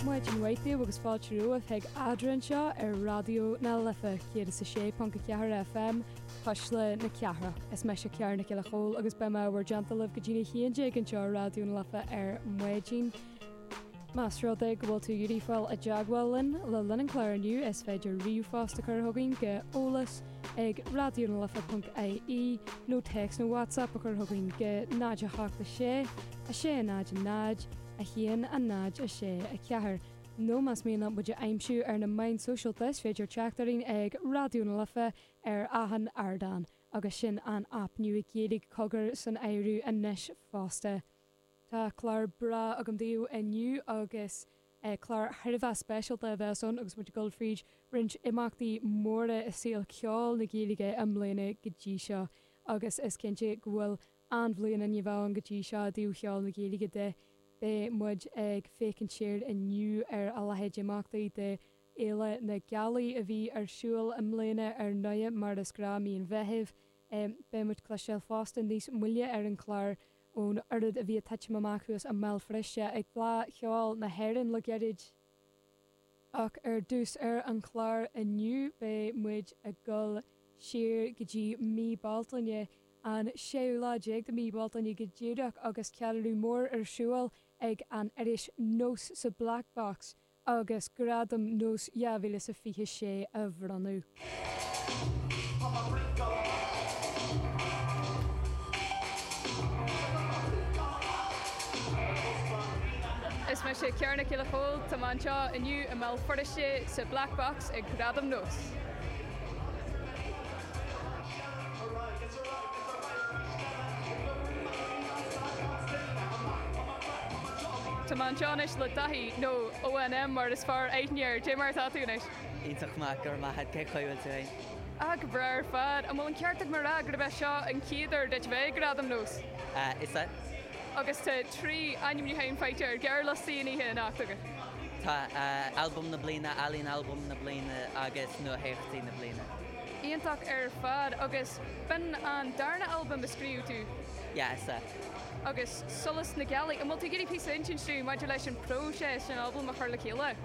Maidin mhaith daoibh agus fáilte romhaibh chuig Eadra anseo ar Raidió na Life 106.4 FM, Cuisle na Cathrach. Is mise Ciara Nic Giolla Chomhaill agus beidh mé i bhur dteannta libh go dtí a 11 anseo ar Raidió na Life ar maidin. Más rud é go bhfuil tú ag iarraidh fáil i dteagmháil linn le linn an chláir inniu, is féidir ríomhphost a chur chugainn go eolas ag Raidió na Life ponc IE nó téacs nó WhatsApp a chur chugainn go 086 600 106 4 nó más mian leat muid a aimsiú ar na meáin sóisialta is féidir teacht orainn ag Raidió na Life ar achan ardán agus sin an aip nua Gaeilge Cogar san áireamh anois fosta. Tá clár breá agam daoibh inniu agus. Clár thar a bheith speisialta a bheas ann agus muid ag dul fríd roinnt imeachtaí móra i saol ceoil na Gaeilge i mbliana go dtí seo agus is cinnte go bhfuil an-bhliain ann go dtí seo i dtaobh cheol na Gaeilge de. Beidh muid ag féachaint siar inniu ar a leithéid d'imeachtaí de Fhéile na Gealaí a bhí ar siúl i mbliana ar ndóigh mar is gnáth mí an Mheithimh. Beidh muid ag cloisteáil fosta níos moille ar an gclár ón oiread a bhí ag titim amach thuas i mBéal Feirste ag Fleá Cheoil na hÉireann le gairid. Ach ar dtús ar an chlár inniu beidh muid ag dul siar go dtí mí Bealtaine, an séú lá déag de mhí Bealtaine go díreach agus ceiliúradh mór ar siúl ag an iris Nós sa Black Box, agus Gradaim Nós 2026 á mbronnadh. Is mise Ciara Nic Giolla Chomhaill. Tá mé anseo inniu i mBéal Feirste sa Black Box ag Gradaim Nós. Tá mé anseo anois le Daithí, nó ON M mar is fearr aithne air. Dé mar atá tú anois? Iontach maith, go raibh maith a'd, cé chaoi bhfuil tú fhéin? Ah, go breá ar fad. An bhfuil an ceart agam a rá gurb é seo an chéad uair duit a bheith ag Gradaim Nós? Ah, is ea. Agus tá trí ainmniúcháin faighte ar ghearrliostaí na hoíche anocht agat. Tá, Albam na Bliana, Ealaín Albaim na Bliana agus Nuatheachtaí na Bliana. Iontach ar fad. Agus b'in an darna albam a scríobh tú? Yes, ah. Agus Solas na Gealaí, an bhfuil tú ag iarraidh píosa a insint dúinn maidir leis an próiseas den albam a chur le chéile?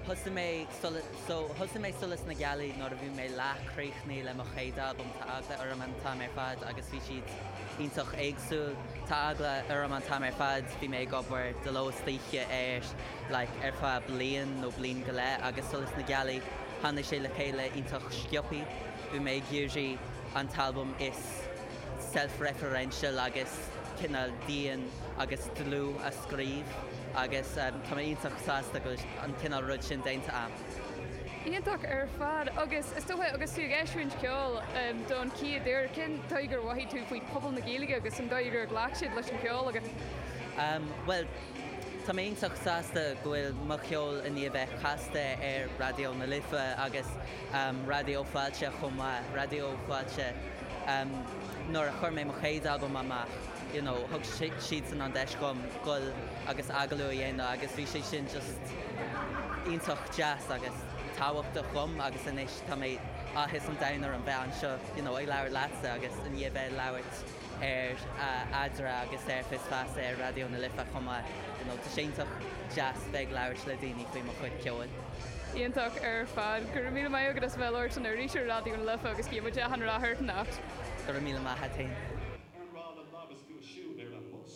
Thosaigh mé Solas, so, thosaigh mé Solas na Gealaí nuair a bhí mé leath críochnaithe le mo chéad albam, Tá Eagla Orm an tAm ar Fad agus bhí siad iontach éagsúil. Tá Eagla Orm an tAm ar Fad, bhí mé ag obair de ló is d'oíche air, like, ar feadh bliain nó bliain go leith agus Solas na Gealaí tháinig sé le chéile iontach sciobtha. Bhí mé ag iarraidh an t-albam is self-referential agus cineál dian agus dlúth a scríobh agus tá mé iontach sásta go bhfuil an cineál rud sin déanta a'm. Iontach ar fad agus is dócha agus tú ag eisiúint ceol don chéad uair, cén dóigh gur mhothaigh tú faoi pobal na Gaeilge agus an dóigh ar ghlac siad leis an cheol agat? Bhuel, Tá mé iontach sásta go bhfuil mo cheol i ndiaidh bheith casta ar Raidió na Life agus Raidió Fáilte chomh maith. Raidió Fáilte, nuair a chuir mé mo chéad albam amach, you know, thug siadsan an deis dhom goil agus agallamh a dhéanamh agus bhí sé sin just iontach deas agus tábhachtach dhom agus anois tá mé, áthas an domhain orm bheith anseo, you know, ag labhairt leatsa agus i ndiaidh bheith ag labhairt. ar Eadra agus ar Fios Feasa ar Raidió na Life chomh maith. You know, tá sé iontach deas bheith ag labhairt le daoine faoi mo chuid ceoil. Iontach ar fad. Go raibh míle maith agat as a bheith ag labhairt linn arís ar Raidió na Life agus guímid gach rath ort anocht. Go raibh míle maith agat féin. Ar mhaith le labhairt agat siúd ar an mbus?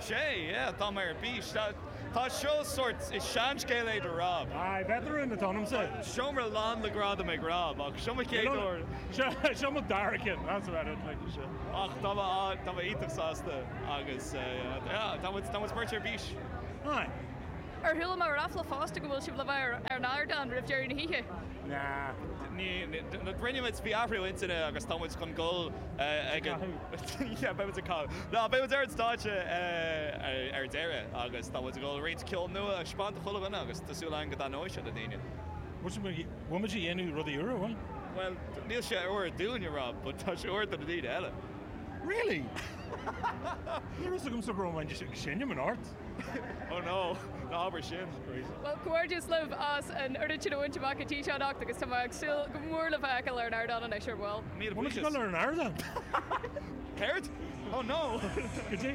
Sea, yeah, tá mé ar bís. Tá seo sórt, is seanscéal é do Rob. Aye, beidh do rúm lán, t'ainmse. Seomra lán le gradam ag Rob, ach seo mo chéad uair. Seo mo dara ceann, that's about it, like. Ach tá mé, tá mé iontach sásta agus yeah, tá muid, tá muid beirt ar bís. Aye. Ó chuala mé ráfla fosta go bhfuil sibh le bheith ar an ardán roimh deireadh na hoíche? Nah. Ní, rinne muid, bhí athrú intinne agus tá muid chun goil ag an. yeah, beidh muid ag canadh. Ná, beidh muid ar an stáitse ar deireadh agus tá muid ag dul roinnt ceol nua a thaispeáint do chuile dhuine agus tá súil againn go dtaitneoidh sé le daoine. Bhuel, bhfuil muid ag déanamh rudaí úra, bhfuil? Bhuel, níl sé úr dúinne, Rob, but tá sé úr do na daoine eile. Really? Ní raibh 'fhios agamsa go raibh muid ag seinm anocht. Ó no, na h-abair sin, Louise. Bhuel, comhghairdeas libh as an oiread sin a bhaint amach go dtí seo anocht agus tá mé ag súil go mór le bhur bhfeiceáil ar an ardán anois ar ball. Míle buíochas. Bhuel, ar an ardán! Céard? Ó no! Go dtí.